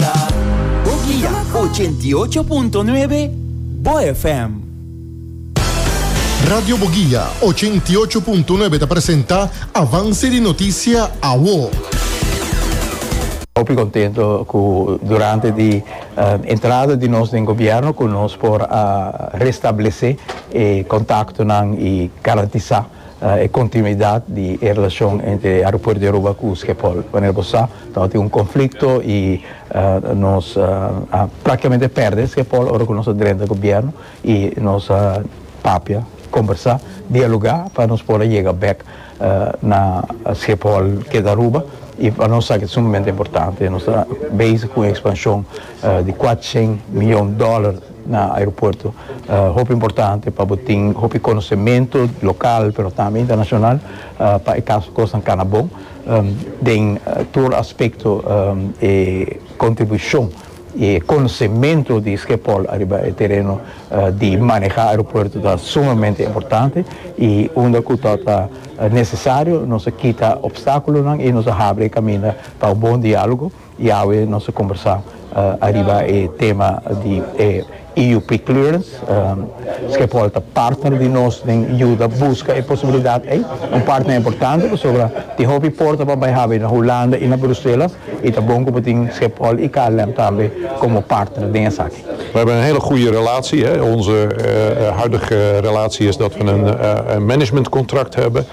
ta bo guia ochenta i ocho punto nuebe Bo FM. Radio Boguia ochenta i ocho punto nuebe ta presenta Avance di Noticia Awo. Hopi contento cu durante di entrada di nos den gobierno cu nos por a restablece e contactonan y garantisa. e kontinuidat di e relashon entre Aeropuerto di Aruba ku Skepol. Manera bo sa, tabata tin un konflikto i nos a praktikamente pèrdè Skepol ora ku nos a drenta gobièrnu i nos a papia, kombersá, dialogá pa nos por a yega bèk na Skepol ke ta Aruba i pa nos sa ke ta sumamente importante. Nos ta bezig ku un ekspanshon di kuatrocièn miyon dòler. Na aeropuerto ta hopi importante pa bo tin hopi konosementu lokal pero tambe internashonal pa e kaso kosnan kana bon den tur aspekto e kontribushon i e konosementu di Skepol ariba e tereno di manehá aeropuerto ta sumamente importante i unda ku ta ta nesesario nos a kita opstákulonan i nos a habri e kaminda pa un bon diálogo. Yawe nos a kombersá ariba e tema di e EUP clearance. Schiphol ta partner di nos den yuda buska e posibilidat ei. Un partner importante pasobra tin hopi por ta pa bai habri na Hulanda i na Brusela i ta bon ku bo tin Schiphol i KLM tambe komo partner den esaki. We hebben een hele goede relatie. Onze huidige relatie is dat we een managementcontract hebben.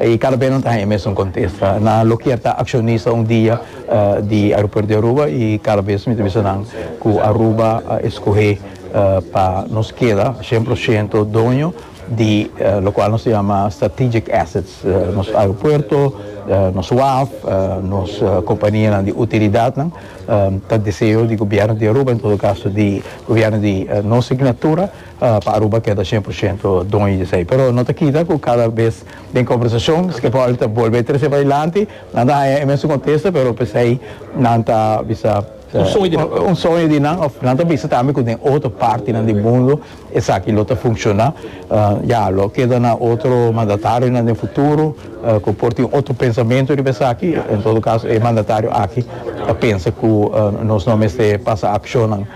I kada bes nan ta haña mesun kontesta. Nan lo kier ta akshonista un dia di aeropuerto di Aruba i kada bes mi ta bisa nan ku Aruba a eskohé pa nos keda shen por shento doño di lokual nos ta yama strategic assets, nos aeropuerto, nos waf, nos kompanianan di utilidatnan. Ta deseo di gobièrnu di Aruba, en todo kaso di gobièrnu di nos signatura. pa Aruba keda shen por shento doño di esei. Pero no ta kita ku kada bes den kombersashon Schiaparelli ta bolbe trese padilanti, nan ta haña e mesun kontesta pero p'esei nan ta bisa, un soño di nan òf nan ta bisa tambe ku den otro partinan di mundu esaki lo ta funshoná. Ya lo keda na otro mandatarionan den futuro ku por tin otro pensamentu riba esaki. En todo kaso e mandatario aki ta pensa ku nos no mester pasa akshonnan.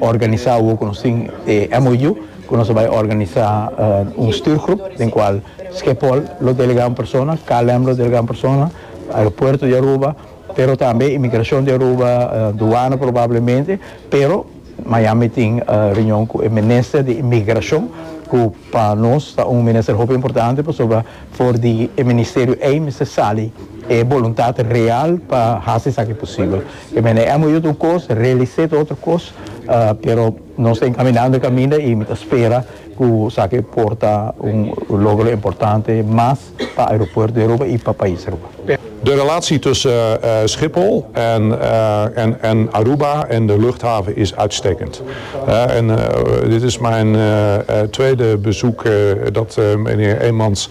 Organisá awor ku nos tin e MOU ku nos a bai organisá un stürgroep den kual Schiphol lo delegá un persona, KLM lo delegá un persona, aeropuerto di Aruba, pero tambe imigrashon di Aruba, duana probablemente, pero Miami tin reunion ku e minister di imigrashon ku pa nos ta un minister hopi importante pasobra for di e ministerio ei mester sali e boluntat real pa hasi esaki posibel. E mene emo yut un kos, realisé ta otro kos, pero nos ta enkaminando e kaminda i mi ta spera ku esaki por ta un logro importante mas pa aeropuerto di Aruba i pa pais Aruba. De relatie tussen Schiphol en Aruba en de luchthaven is uitstekend. Dit is mijn tweede bezoek dat mijnheer Eemans